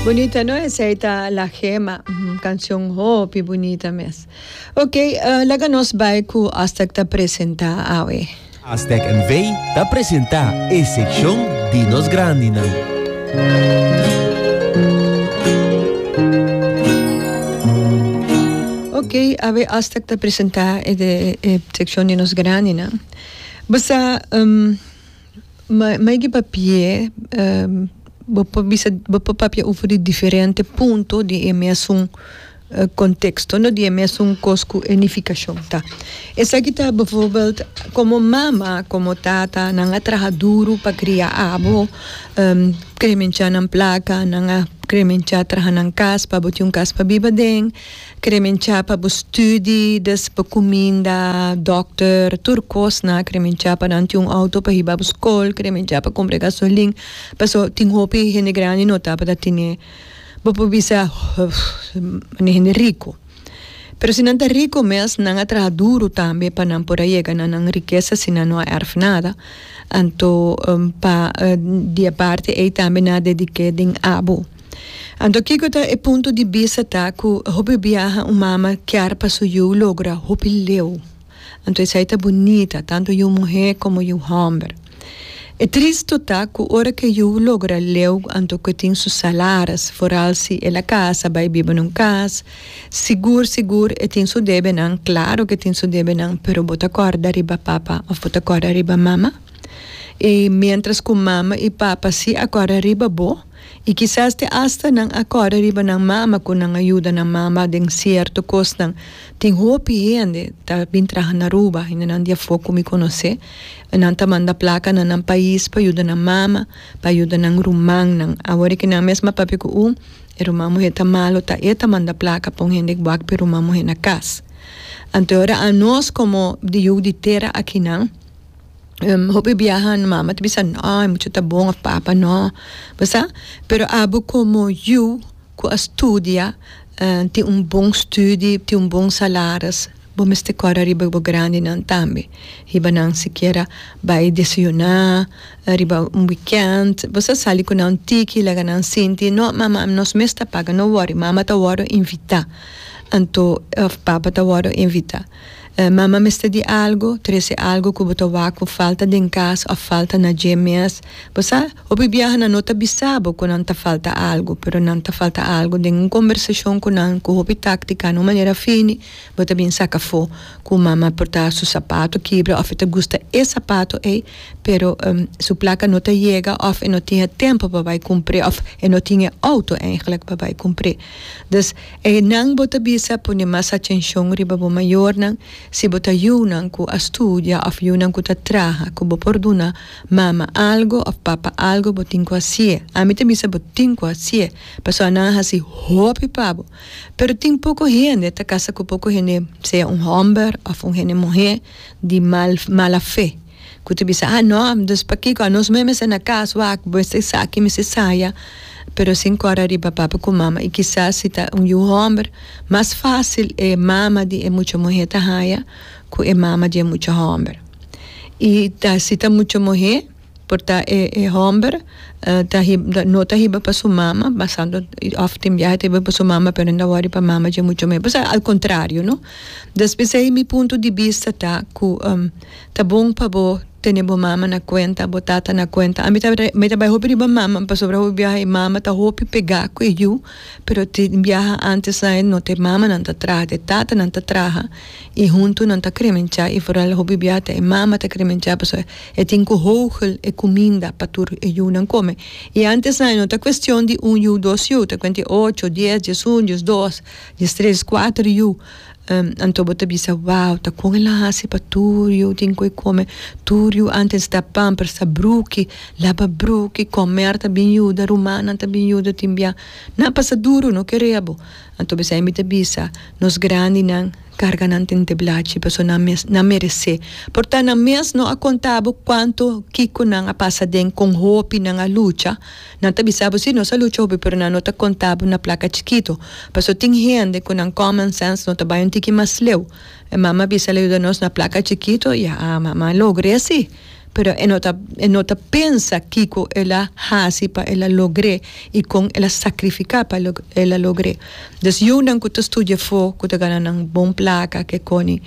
Bunita no esei ta La Gema, un canción hopi bunita mes. Ok, uh, laga nos bai cu Aztec ta presenta awe. Aztec NV ta presenta e seccion di nos grandinan. Ok, awe Aztec ta presenta e, de, e seccion di nos grandinan. Basa, um, Ma maigi papi'e bo por bisa bo por papia ofri di diferente punto di e mesun konteksto no di e mesun kos ku e nifikashon ta esaki ta bivorbèld komo mama komo tata nan a traha duru pa kria abo kremencha nan plaka nan a kremencha traha nan kas pa bo tin un kas pa biba den. Kremencha pa bo studi, des bo kuminda, dòkter, tur kosnan. Kremencha pa nan tin un outo pa hiba bo skol. Kremencha pa kumpra gasolin. Paso tin hopi hende grandi no tabata tene. Bo por bisa, Nan e hende riku. Pero si nan ta riku mes, nan a traha duru tambe pa nan por a yega na nan rikesa si nan no a èrf nada. Anto, pa di e parti ei tambe nan a dedik'é den abo. Anto kiko ta e punto di bista ta ku hopi biaha un mama kier pa su yu logra hopi leu. Anto esei ta bunita, tantu yu muhé komo yu hòmber. E tristu ta ku ora ku e yu logra leu anto ku e tin su salaris, foral si el a kasa bai biba nun kas, sigur sigur e tin su debenan, klaro ku e tin su debenan, pero bo ta kòrda riba papa òf bo ta kòrda riba mama? I miéntras ku mama i papa si a kòrda riba bo, I kisas te asta nan a kòrda riba nan mama ku nan a yuda nan mama den sierto kosnan. Tin hopi hende ta bin traha na Aruba, hendenan di afó ku mi konosé, nan ta manda plaka na nan pais pa yuda nan mama, pa yuda nan rumannan. Awor ke nan mes a papia ku un e ruman muhé ta malu, ta e ta manda plaka pa un hende ku wak pa e ruman muhé na kas. Anto e ora anos komo di Yug di Tera akinan, hopi biaha no mama ta bisa no e mucha ta bon of papa no bo sa pero abo como yu cu a studia tin un bon studi tin un bon salaris bo mester cora riba bo grandinan tambe hiba nan sikiera bai desayuna riba un weekend bo sa sali cu nan tiki laga nan sinti no mama nos mes ta paga no worry mama ta worde invita anto of papa ta worde invita. Mama mester di algo, trese algo ku bo ta wak ku falta den kas òf falta na dje mes. Bo sa, hopi biaha nan no ta bisa bo ku nan ta falta algo, pero nan ta falta algo den un kombersashon ku nan ku hopi táktika na un manera fini bo ta bin saka afó ku mama por ta su sapato kibra òf e ta gusta e sapato ei pero su plaka no ta yega òf e no tin e tempu pa bai kumpr'é òf e no tin e outo eigenlijk pa bai kumpr'é. Dus. E nan bo ta bisa pone mas atenshon riba bo mayornan, si bo ta yunan ku a studia òf yunan ku ta traha ku bo por duna mama algu òf papa algu bo tin ku hasié. Ami ta bisa bo tin ku hasié pasobra nan a hasi hopi pa bo. Pero tin poko hende ta kasa ku poko hende sea un hòmber òf un hende muhé di mal mala fe. ku ta bisa, Ah no, dus pakiko anos mes mester na kas wak, mester esaki, mester saya, pero sin kòrda riba papa ku mama. I kisas si ta un yu hòmber, mas fásil e mama di e mucha muhé ta haña ku e mama di e mucha hòmber. I ta si ta mucha muhé, por ta e e hòmber ta hiba no ta hiba pa su mama, basando òf tin biaha ta hiba pa su mama pero nan wòri pa mama dje mucha muhé, pues al kontrario, no. Des p'esei mi punto di bista ta ku. Ta bon pa bo tene bo mama na cuenta, bo tata na cuenta. A mi ta mi ta bay hopi riba mama pasobra hopi biaha e mama ta hopi pega cu e yu, pero te biaha antes ain no te mamanan ta traha te tatanan ta traha y hunto nan ta cremencha y foral hopi biaha ta e mama ta cremencha pasobra e tin cu hogel e cuminda pa tur e yunan come. Y antes ain no ta cuestion di un yu dos yu ta cuenti ocho, dies, diesun, diesdos, diestres, cuater yu. Anto bo ta bisa, Wow, ta con el a haci pa tur yu tin cu e come. Tur yu antes ta pamper, ta bruki, laba bruki, comer ta bin yuda, rumannan ta bin yuda tin bia. Nan pasa duro, no kerea bo. Anto mi esei mi ta bisa, nos grandinan carga nan den teblachi pasobra nan mes, nan merece. Por ta nan mes no a conta bo cuanto, kico nan a pasa den, con hopi nan a lucha. Nan ta bisa bo si nos a lucha hopi pero nan no ta conta bo na placa chikito paso tin hende cu nan common sense no ta bay un tiki mas leu. E mama bisa el a yuda nos na placa chikito y a mama logr'e si pero e no ta e no ta pensa kico el a haci pa el a logr'e y con el a sacrifica pa el a logr'e. Des yunan cu ta studia afo cu ta gana nan bon placa ke coni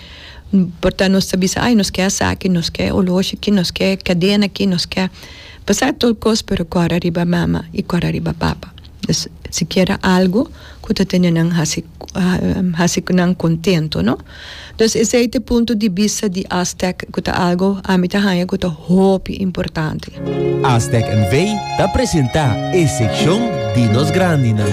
por ta nos ta bisa ay nos ke asaki nos ke oloshi ki nos ke cadena ki nos ke. Pasa tur cos pero cora riba mama y cora riba papa. Pues sikiera algo cu ta tene nan haci haci nan contento no. Pues esey ta e punto di bista di Aztec cu ta algo ami ta haya cu ta hopi importante. Aztec NV ta presenta e seccion di nos grandinan.